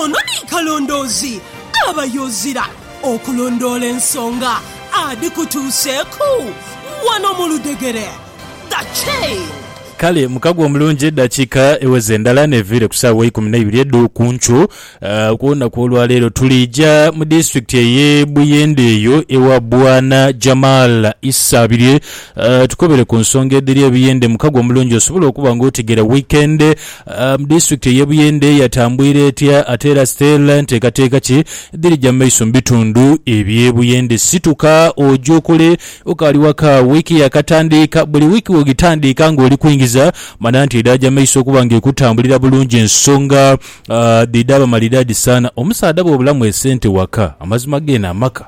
Ono ni kalondoozi aba y'ozira okulondoola ensonga adhikutuuseeku wano mu ludhegere. The Chain. Kale mukago omulungi eddakiika eweze ndala n'eviire ku saawa eikumi n'eibiri edho ku nkyo. Ah, ku lunaku olwaleero tuliija mu disitulikiti ey'e Buyende eyo ewa Bwana Jamal Isabirye ah, tukobere ku nsonga edhiri e Buyende mukago omulungi osobole okuba nga otegeera weekend Mu disitulikiti ey'e Buyende yatambwira etya, ate era Stella nteekateeka ki edhirija mu maiso mu bitundu eby'e Buyende? Situka oje okole okaali waka, wiiki yaakatandiika. Buli wiiki bw'ogitandiika ng'oli kwingiza, mana nti edhaja mu maiso okuba ng'ekutambulira bulungi. Ensonga dhidha bamalidaadi sana. Omusaadha bw'obulamu esente waka, amazima geene amaka.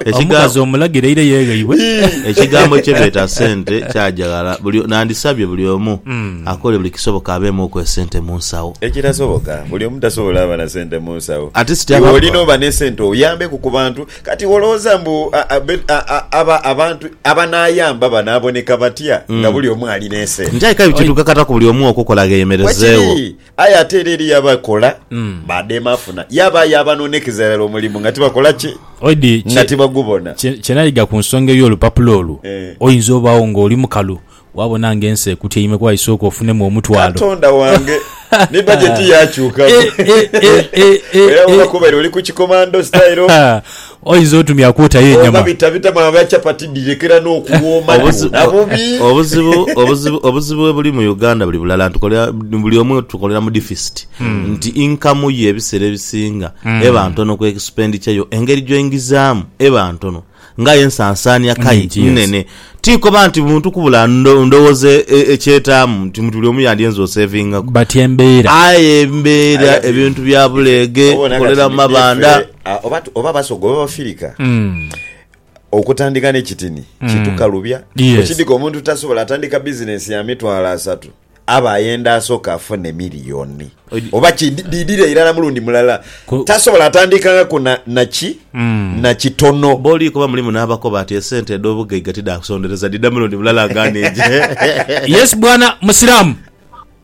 Ekiga- Omukazi omulagire eire yegheibwe. Ekigambo kye beeta sente kyaja ghala. Buli, nandisabye buli omu akole buli kisoboka abeemuuku esente mu nsawo. Ekitasoboka, buli omu tasobola aba na sente mu nsawo. At least Iwe aba- olina oba n'esente oyambeku ku bantu. Kati iwe olowooza mbu a- a- be- a- a- aba- abantu abanaayamba banaaboneka batya nga buli omu ali n'esente? Nti aye kale bwe kituuka kata ku buli omu okukola gheemerezeegho. Bwekiri. Aye ate era eriyo abakola badema afuna, yabaayo abanoonekeza irala omulimu nga tibakola ki? Oidi, kye- Nga tibagubona. kye- kye nayiga ku nsonga ey'olupapula olwo, Eh. oyinza obaawo ng'oli mukalu waabona ng'ensi ekutyaime kuba isooka ofunemu omutwalo. Katonda wange ni bajeti yakyukaku Eh, eh, eh, eh, eh, era eh. bw'oba kubaire oli ku kikomando style Ha, Oinza otumya kwotayo enyama. Oba bitabitamu abo ba chapati dhirekera n'okuwooma dhoona bubi. Obuzibu obuzibu obuzibu webuli mu Uganda buli bulala ntukolera buli omu tukolera mu deficit nti income yo ebiseera ebisinga eba ntono ku expenditure yo engeri gy'oingizaamu eba ntono nga aye ensansaania kai nnene. Tinkoba nti muntu kubula ndo ndowooza ekyetaamu nti buli omu yandyenze osevingaku aye embeera ebintu bya buleege, tukolera mu mabanda. Ah, oba tu- oba basoga oba bafirika Mm. okutandika n'ekitini kitukalubya Yes. okidika omuntu tasobola atandika bizinensi ya mitwalo asatu aba ayenda asooka afune miliyoni Ogi- oba kidi- diidira irala mulundi mulala Ku- tasobola atandikaku na- naki Mm. na kitono Boli kuba mulimu n'abakoba ati esente edh'obugaiga tidhaakusondereza dhidha mulundi mulala nga neje. Yes bwana Musiraamu.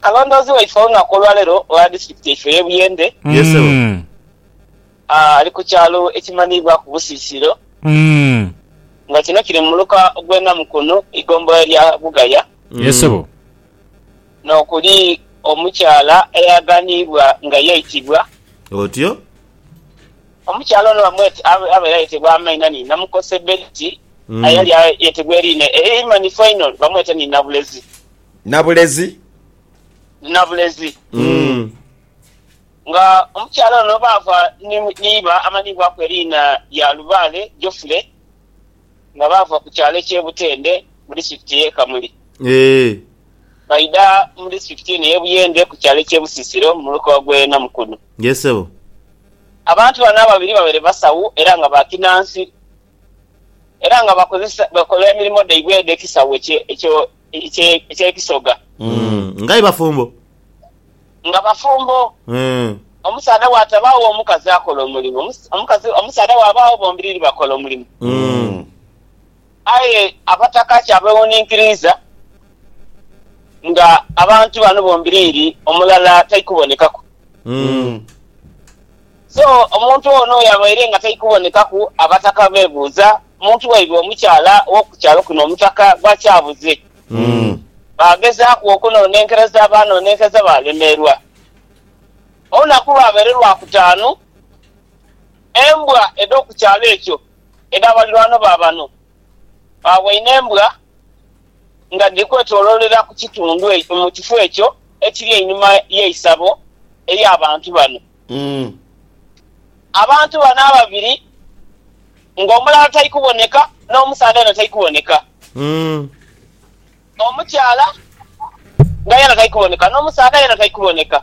Kalondoozi waife olunaku olwaleero ogha disitulikiti yaife eye Buyende ali ku kyalo ekimanhibwaku Busisiro nga kino kiri mu muluka ogwe Namukunhu eigombolola erya Bugaya nokuli omukyala eyaghanhibwa nga yaitibwa otyo. Omukyala ono bamweta abaire ayetebwa amaina ni Namukose Betty aye yali ayetebwa eriina eimanhifu einho bamweta ni Nabulezi. Nabulezi. Nabulezi. Mm. Nga omukyala ono baava ni, ni iba amanhibwaku eriina lya Lubaale Geoffrey nga baava ku kyalo eky'e Butende mu disitulikiti y'e Kamuli. Eeh. Baidha mu disitulikiti eno ey'e Buyende ku kyalo eky'e Busisiro mu muluka gw'e Namukono. Yes sebo. Abantu bano ababiri babaire basawo era nga ba kinansi era nga bakozesa, bakola emirimo dhaibwe edh'ekisawo ekye, ekyo eky'ebisoga. Nga aye bafumbo? Nga bafumbo. Omusaadha bw'atabaagho, omukazi akola omulimu. Omukazi, omusaadha bw'abaagho, bombiriri bakola omulimu. Aye abataka kyabeewuninkiriiza nga abantu bano bombiriri omulala tai kubonekaku. So, omuntu ono yabaire nga tai kubonekaku, abataka beebuuza Omuntu waibwe omukyala ow'oku kyalo kuno omutaka gw'akyabuze. Baagezaaku okunonenkereza baanonenkereza baalemerwa. Olunaku lwabaire Lwakutaanu, embwa edh'oku kyalo ekyo edha balirwano ba bano baawaine embwa nga dhiri kwetoloolera ku kitundu mu kifo ekyo ekiri einhuma y'eisabo ery'abantu bano. Abantu bano ababiri nga omulala tali kuboneka n'omusaadha yena tali kuboneka. Omukyala nga yena tali kuboneka n'omusaadha yena tali kuboneka.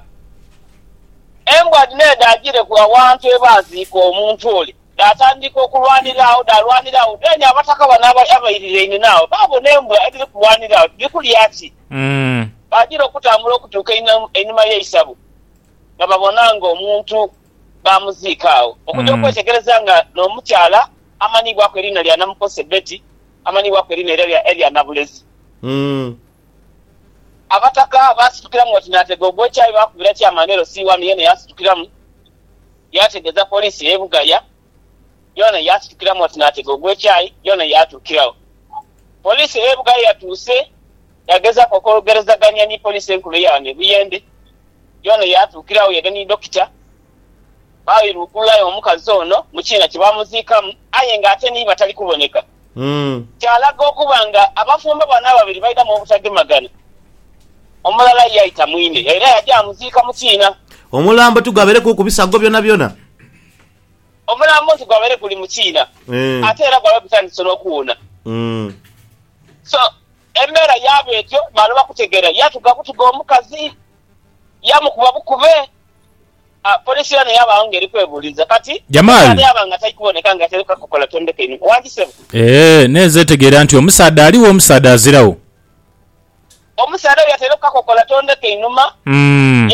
Embwa dhino edho dhaajireku awantu ye baaziika omuntu ole, dhaatandika okulwanira agho, dhaalwanira agho. Then abataka bano abairiraine naabo baabona embwa edhiri kulwanira agho dhiri kulya ki? Baagira okutambula okutuuka einhuma y'eisabo. nga babona nga omuntu baamuziika agho. Okuja okwetegereza nga n'omukyala amanhibwaku eriina lya Namukose Betty amanhibwaku eriina eirala erya Nabulezi. Abataka baasitukiramu oti naatega ogw'ekyayi baakubira Chairman LC1 yeena yaasitukiramu yaategeeza poliisi ey'e Bugaya yoona yaasitukiramu oti n'atega ogw'ekyayi yoona yaatuukiragho. Poliisi ey'ebughaya yatuuse yaagezaaku okwogerezagania ni poliisi enkulu eya ghano e Buyende, yoona yaatuukiragho yaidha ni dokita baairugulayo omukazi ono mu kiina kye baamuziikamu aye ng'ate ni iba tali kuboneka, kyalaga okuba nga abafumbo bano ababiri baidhamu obutagemagana, omulala yaita mwine era yaja yaamuziika mu kiina. Omulambo tigwabeereku ku bisago byonabyona. Omulambo nti gwabaire guli mu kiina ate era gwabaire gutandise n'okuwuuna. So, embeera yaaba etyo male bakutegeera. Yatuga butuga omukazi, yamukuba bukube. Poliisi yoona yaba agho ng'eri kwebuuliza kati omusaadha yaaba nga tai kuboneka nga ataireku akakokola. Tondeka einhuma. Wangi ssebo. Eeh, n'enze ntegeera nti omusaadha aligho, omusaadha aziragho. Omusaadha oyo yataireku kakokola tondeka einhuma,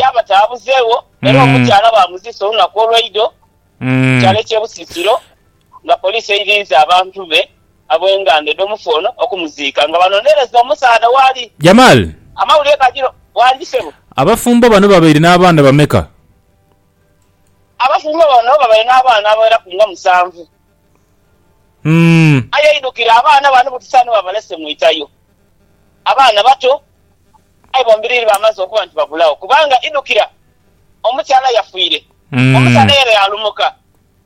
yaaba taabuzegho, era omukyala baamuziisa olunaku olw'eidho ku kyalo eky'e Busisiro nga poliisi eiriinze abantu be ab'enganda edh'omufu ono okumuziika nga banonereza omusaadha waali. Jamal, Amawulire gajira wangi sebo. Abafumbo bano babaire n'abaana bameka? Abafumbo bano babaire n'abaana abagheraku nga musanvu. Umm. Aye aidhukira abaana bano butusa ni babalese mu itayo. Abaana bato, aye bombiriri bamaze okuba nti babulagho kubanga idhukira omukyala yafiire. Omusaadha yena yalumuka.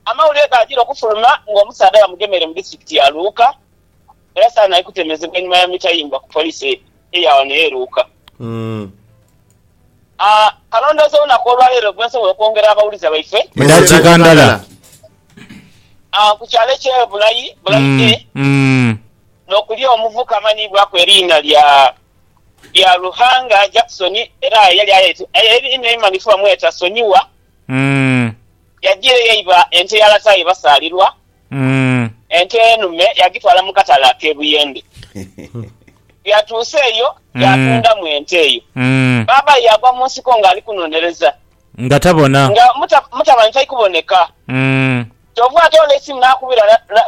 Amawulire gaajira okufuluma ng'omusaadha bamugemeire mu disitirikiti ya Luuka era saanhai kutemezebwa einhuma ya mita yimbwa ku poliisi eya wano e Luuka. Kalondoozi olunaku olwaleero bwensobola okwongera abawuliza baife. Edhakiika ndala. Ku kyalo ekye Bulayi, Bulayi A, nokuli omuvuka amanhiibwaku eriina lya Ruhanga Jackson era eyali aye einhuma ebimanhifu bamweta Sonyiwa, yajiireyo eiba ente ya lataye basaalirwa. Umm. Ente enume yagitwala mu katale ak'e Buyende. Bweyatuuse eyo yaatundamu ente eyo. Baabaye yaagwa mu nsiko ng'ali kunoonereza. Nga tabona. Nga mutabani tali kuboneka. Kyoova atoola eisimu naakubira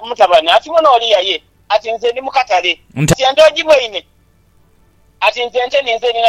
mutabani ati, Muno oli yaye? Ati, Nze ndi mu katale. Nti ente ogibweine? Ati, Nze ente ninze ninha.